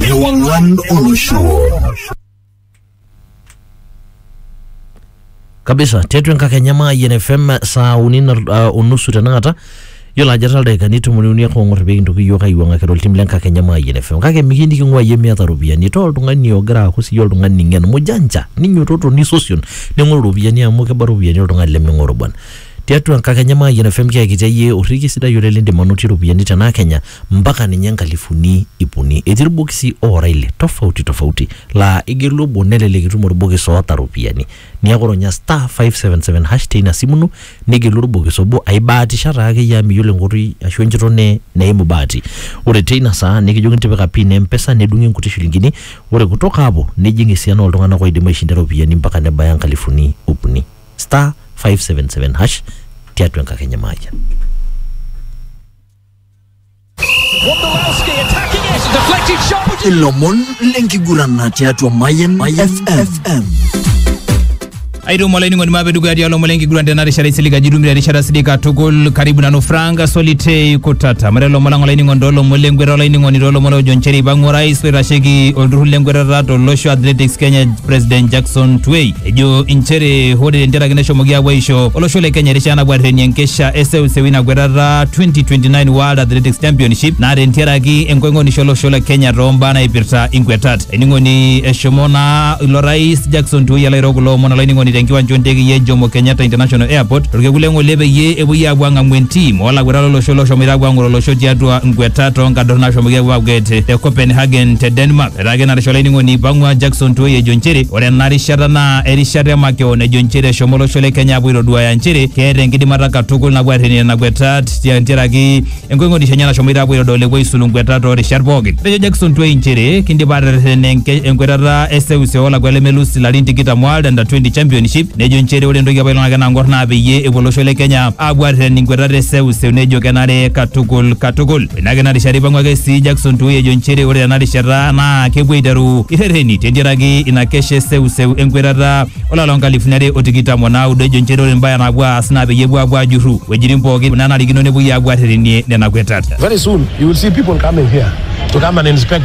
Ewang'an olosho. kabisa tiatua enkakenya maayian fm saa uni na- ah, onusu tenakata yiolo ajo etaa ildaikani tomoni uni ake ong'or pee kintoki yiok aiwuang'akira oltim le nkakenya maayian fm kake miki niking'ua yie miata iropiyiani taa oltung'ani ogira aaku siyie oltung'ani ng'en mujanja ninyototo nisosion ning'oru iropiyiani amu keba iropiyiani oltung'ani leming'oru bwana Tiatua enkakenya Mayian FM kiakitia iyie orrekie sidai oleng lindim anotie iropiyiani tena kenya mpaka ninye inkalifuni ip uni. Etii irbokisi oora ile tofauti tofauti laa igelu obo nelelek itum orbokis oota iropiyiani. Niaku ronya star five seven seven hash teina simu ino nigelu orbokis obo aibaatisha taakeyie amu miyiolo enkoitoi ashu enchoto ne neimu bahati. Ore teina saa nikijokini tipika pin e mpesa nedung'i inkuti shilingini ore kutoka hapo nijing esiana oltung'anak oidim aishinda iropiyiani mpaka nebaya inkalifuni ip uni. star 577 hash tiatua enkakenya maayian ilomon lenkigurana tiatua Mayan FM. aitumo olainining'oni maape dukuya tialo omon lenkiguran tena rishata isilig ajo itumito erishata sidai katukul karibu nanu frank solitei kutata mare lomon lang olainining'oni toolomon lenkwetata olainining'oni toolomon oojo nchere eipang'u orais oitasheki olturrur lenkwetata tolosho athletics kenya president jackson twei ejo inchere ore tenteraki neshomoki aapuo aisho olosho le kenya erishata napuo arrenie enkesha eseuseu ina kwetata 2029 world athletics championship naa tenteraki enkoing'onisho olosho le kenya toombaa naipirta inkwetat ening'oni eshomo naa ilo rais jackson tuwoi alo airo kulo omon olainining'oni tenkiwanja ontekei e jomo kenyatta international airport torkekun le ng'ole peyie epuoi aapuo ang'amu entim oolakwetata olosho loshomoita aapuo ang'or olosho tiatua nkwetat oonkadorr naashomoki aapuo aakwet te copenhagen te denmark Etaa kenarisho olainining'oni Ipang'ua Jackson Tuoi ejo nchere ore ena rishata naa erishata e makeon ejo nchere eshomo olosho le Kenya apuo aitoduaya nchere keeta enkidimata katukul napuo aarrenie nena kwetat tiaraki enkoing'onisho enye nashomoita apuo aitodol epuo aisulu nkwetat too rishat pookin. Etejo Jackson Tuoi nchere kindipa aaterreten enke- enkwetata e seuse oo lakua lemelus ilarin tikitam World Under 20 Championship nejo nchere ore entoki apa ilo ng'oki nang'or naa peyie epuo olosho le Kenya apuo aarreten inkwetat e seuse nejo kenare katukul katukul. Ina ake ina rishata eipang'u ake sii Jackson Tuwei ejo nchere ore tena rishata naa kepuo aiteru irhereni tentiaraki ina kesha e seuseu enkwetata olapa loo nkalifuni are o tikitam o naudo ejo nchere ore imbaa naapuo aas naa peyie epuo aapuo aajurru wuejitin pooki naanarikino nepuoi aapuo aarherenie nena kwetat. Very soon you will see people coming here to come and inspect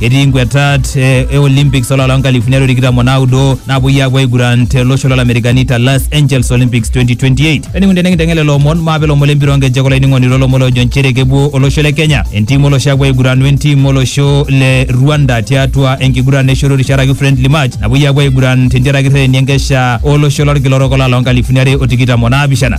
etii inkwetat eh, e olympics olapa loo nkalifuni are o tikitam o naudo napuoi aapuo aiguran te losho lo lamerikani te los angeles olympics 2028 enikun tenikinteng'el lelo omon maape lomon lempira onkejek olainining'oni lolomon loojo nchere kepuo olosho le kenya entim olosho apuo aiguran wentim olosho le rwanda tiatua enkiguran eshoto risharaki friendly match napuoi apuo aiguran tentiaraki rreteni enkesha olosho lorkila orok olapa loo nkalifuni are o tikitam o naapishana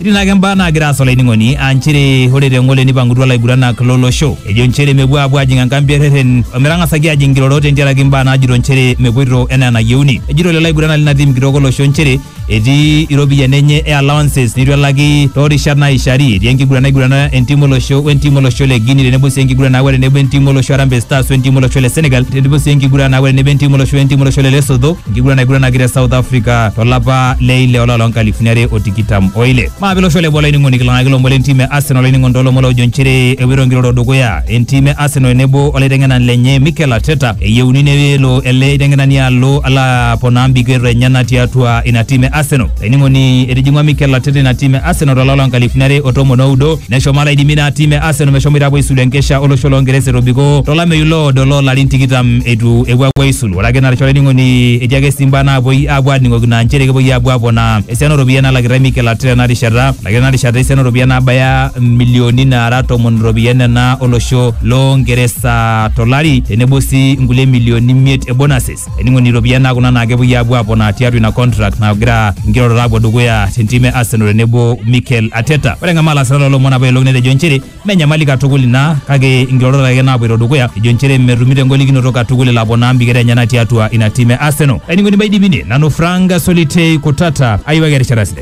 Etii naake imbaa naagira aasa olainining'oni aa nchere ore te ngole nipang'utua laiguranak lolosho ejo nchere mepuo aapuo aajing enkambi e rreten ometang'asaki aajing nkirorot tentiaraki mbaa naajito nchere mepuoito enaa enayieuni. Ejito lelo aiguranak lina tim kitok olosho nchere etii iropiyiani enye e allowances neitu elaki too rishat naaishari. Etii enkiguran naigurana entim olosho we ntim olosho le Guinea tenebo sii enkiguran naawa tenebo entim olosho Harambee Stars we ntim olosho le Senegal tenebo sii enkiguran naawa tenebo entim olosho we ntim olosho le Lesotho. enkiguran naiguranaki te South Africa tolapa le ile olapa loo nkalifuni are o tikitam o ile. Maape losho le boo olainining'oni kilang'aki lomon le ntiim e Arsenal olainining'oni too lomon loojo nchere epoito nkirorot dukuya entiim e Arsenal tenebo olaiteng'enani lenye Mikel Arteta eyieuni nelo ele aiteng'enani alo alo aponaa mbikerot enyena tiatua ina tiim e Arsenal. Laining'oni etijing'ua Mikel Arteta ina tim e Arsenal tolapa loo nkalifuni are o tomon oudo neshomo alaidimi ina tim e Arsenal meshomoita apuo aisulu enkesha olosho loo Ngeresa etobiko tolameyu loodo loo larin tikitam eitu epuo apuo aisulu. Ore ake narisho olaining'oni etii ake sii mbaa naapuoi apuo aaning'okino aa nchere kepuoi apuo aponaa esiana ooropiyiani nalakitai Mikel Arteta ena rishata. Elakitae ena rishata esiana ooropiyiani naabaya milioni naara tomon iropiyiani nena olosho loo Ngeresa tolari tenebo sii nkulie milioni imiet e bonuses. ening'oni iropiyiani naa kuna naa kepuoi aapuo aponaa tiatua ina contract nagira nkirorot aapuo dukuya tentim e Arsenal tenebo Mikel Arteta. Ore eng'amaa lasirak loolomon apa ilo netejo nchere mme enyamali katukul ina kake nkirorot ake naapuoito dukuya ejo nchere metumito engolikinoto katukul elo aponaa mbiketa enyena tiatua ina tim e Arsenal. Laining'oni maidipini nanu Frank Solitei Kutata ayiwaki erishata sidai.